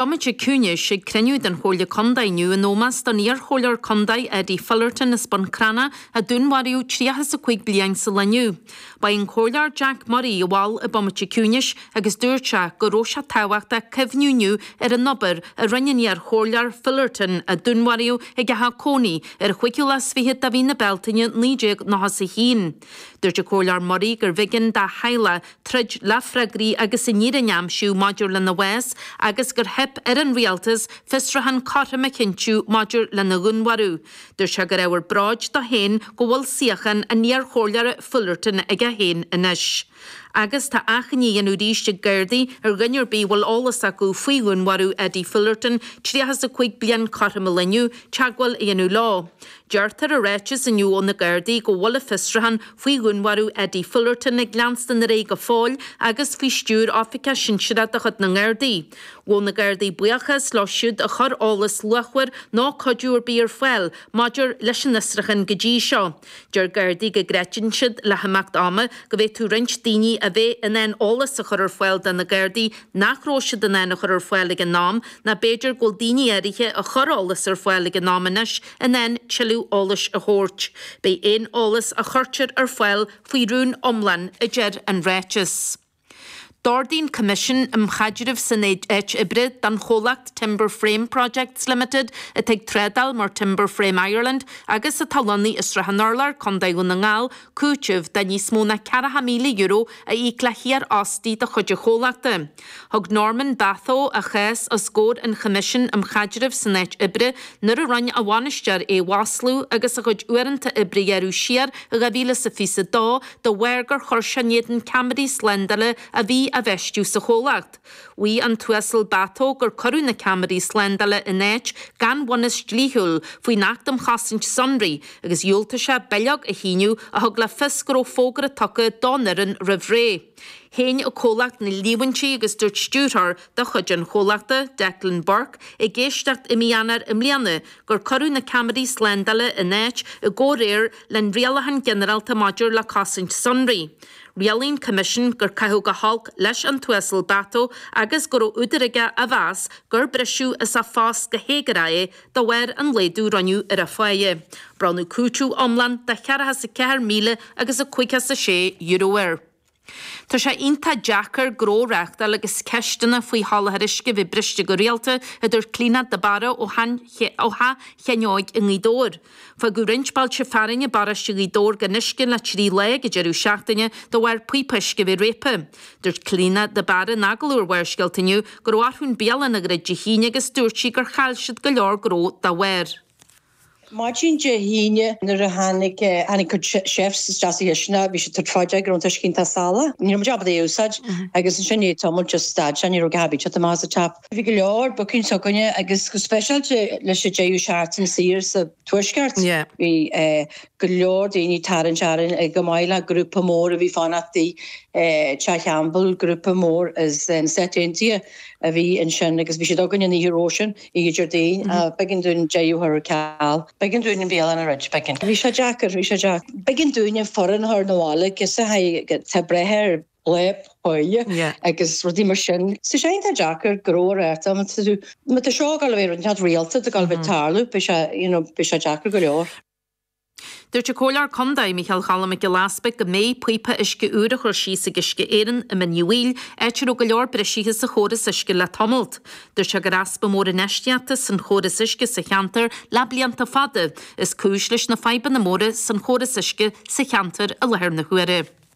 Bomaite ciúnais, ag cruinniú den Chomhairle Contae inniu, in ómós don iarchomhairleoir contae Eddie Fullerton as Bun Cranncha a dúnmharaíodh tríocha is a cúig bliain sa lá inniu. Ba é an Comhairleoir Jack Murray a mhol an bomaite ciúnais agus dúirt sé go raibh sé tábhachtach cuimhniú inniu ar an obair a rinne an iarchomhairleoir Fullerton a dúnmharaíodh ag a theach cónaí ar an chúigiú lá is fiche de mhí na Bealtaine 1991. Dúirt an Comhairleoir Murray gurbh éigean dá theaghlach troid le freagraí agus an fhírinne a aimsiú maidir lena bhás agus gur theip ar an Rialtas fiosrúchán cothrom a chinntiú maidir lena dhúnmharú. Dúirt sé gur ábhar bróid dó féin go bhfuil suíochán an iarchomhairleora Fullerton aige féin anois. Agus tá achainí á dhéanamh arís ag Gardaí ar dhuine ar bith a bhfuil eolas acu faoi dhúnmharú Eddie Fullerton, 35 bliain, cothrom an lae inniu, teagmháil a dhéanamh leo. Deirtear i ráiteas inniu ó na Gardaí go bhfuil a bhfiosrúchán faoi dhúnmharú Eddie Fullerton ag leanstan ar aghaidh go fóill agus faoi stiúir oifigeach sinsearach de chuid na nGardaí. Ghabh na Gardaí buíochas leo siúd a chuir eolas luachmhar nó cuidiú ar bith ar fáil maidir leis an fhiosrúchán go dtí seo. Deir Gardaí go gcreideann siad le himeacht ama go bhféadfadh roinnt daoine a bheith in ann eolas a chur ar fáil do na Gardaí nach raibh siad in ann a chur ar fáil ag an am, nó b'fhéidir go bhfuil daoine áirithe a chuir eolas ar fáil ag an am anois in ann tuilleadh eolais a thabhairt. Beidh aon eolas a chuirtear ar fáil faoi rún iomlán a deir an ráiteas. D'ordaigh an Coimisiún um Chaidreamh san Áit Oibre don chomhlacht Timber Frame Projects Limited, atá ag trádáil mar Timber Frame Ireland agus atá lonnaithe i Srath an Urláir, Co. Dhún na nGall, cúiteamh de níos mó ná €40,000 a íoc le hiarfhostaí de chuid an chomhlachta. Thug Norman Batho a chás os gcomhair an Choimisiúin um Chaidreamh san Áit Oibre nuair a rinne a bhainisteoir é a mhaslú agus a chuid uaireanta oibre a ghearradh siar i 2022 de bharr gur chuir sé in éadan ceamaraí slándála a bhí á bhfeistiú sa chomhlacht. Mhaígh an tUasal Batho gur cuireadh na ceamaraí slándála in áit gan bhunús dlíthiúil faoin Acht um Chosaint Sonraí agus dhiúltaigh sé bileog a shíniú a thug le fios go raibh fógra tugtha don fhoireann roimh ré. Shéan an comhlacht na líomhaintí agus dúirt stiúrthóir de chuid an chomhlachta, Declan Burke, ag éisteacht i mí Eanáir i mbliana gur cuireadh na ceamaraí slándála in áit i gcomhréir le an Rialachán Ginearálta maidir le Cosaint Sonraí, Rialaigh an Coimisiún gur caitheadh go holc leis an tUasal Batho agus go raibh údar aige a mheas gur briseadh as a phost go héagórach é de bharr an laghdú a rinneadh ar a pháighe. Bronnadh cúiteamh iomlán de cheathracha is a ceathair míle agus a caoga is a sé euro air. Tá sé iontach deacair gnó a reáchtáil agus ceisteanna faoi sholáthar uisce a bheith briste go rialta, a deir Clíodhna de Barra ó Theach Sheáin Óig i nGaoth Dobhair. Fágadh roinnt bailte fearainn i bparóiste Ghaoth Dobhair gan uisce le trí lá ag an deireadh seachtaine de bharr píopa uisce a bheith réabtha. Dúirt Clíona de Barra in agallamh ar Bharrscéalta inniu go raibh orthu an bialann a dhruid Dé hAoine agus dúirt sí gur chaill siad go leor gnó dá bharr. Maidin Dé hAoine nuair a tháinig ár gcuid chefs isteach sa chistineach bhí siad ag tabhairt faoi deara go raibh an t-uisce iontach salach. Ní raibh muid ábalta é a úsáid agus ansin i ndiaidh tamaill just stad sé, ní raibh a dhath ag teacht amach as an tap. Bhí go leor bookings againne agus go speisialta leis an deireadh seachtaine saor sa Tuaisceart, bhí go leor daoine ag tarraingt orainn chomh maith le grúpa mór a bhí ag fanacht i dTeach Campbell, grúpa mór as na Stáit Aontaithe a bhí ansin agus bhí siad againn an oíche roimhe sin, oíche Déardaoin, b'éigean dúinn daofa a chur ar ceal, b'éigean dúinn an bhialann a dhruid, b'éigean. Bhí sé deacair, bhí sé deacair. B'éigean dúinn an foireann a chur na bhaile agus a haghaidh te breithe ar. leathsháile agus rudaí mar sin. So sé, tá deacair go leor ar ndóigh má tá seo ag gabháil a bheith rialta ag gabháil a bheith ag tarlú beidh sé you know beidh sé deacair go leor. Dúirt an Comhairleoir Contae, Mícheál Cholm Mac Giolla Easbuig go mbeidh píopa uisce úr á chur síos ag Uisce Éireann i Mín Uí Bhaoill, áit a raibh go leor briseadh sa chóras uisce le tamallt. Dúirt sé gur easpa mór infheistíochta san chóras uisce sa cheantar le blianta fada is cúis leis na fadhbanna móra san chóras uisce sa cheantar i láthair na huaire.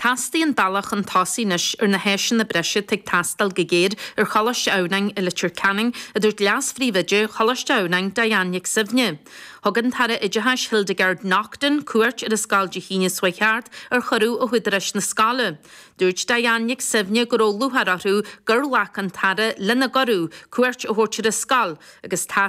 Teastaíonn bealach chun tosaigh anois ar na háiseanna breise atá ag teastáil go géar ar Choláiste Adhamhnáin i Leitir Ceanainn, a dúirt Leas-Phríomhoide Choláiste Adhamhnáin, Diane Nic Suibhne. Thug an tAire Oideachais Hildegarde Naughton cuairt ar an scoil Dé hAoine seo thart ar chuireadh ó údaráis na scoile. Dúirt Diane Nic Suibhne go raibh lúcháir orthu gur ghlac an tAire lena gcuireadh cuairt a thabhairt ar an scoil agus tá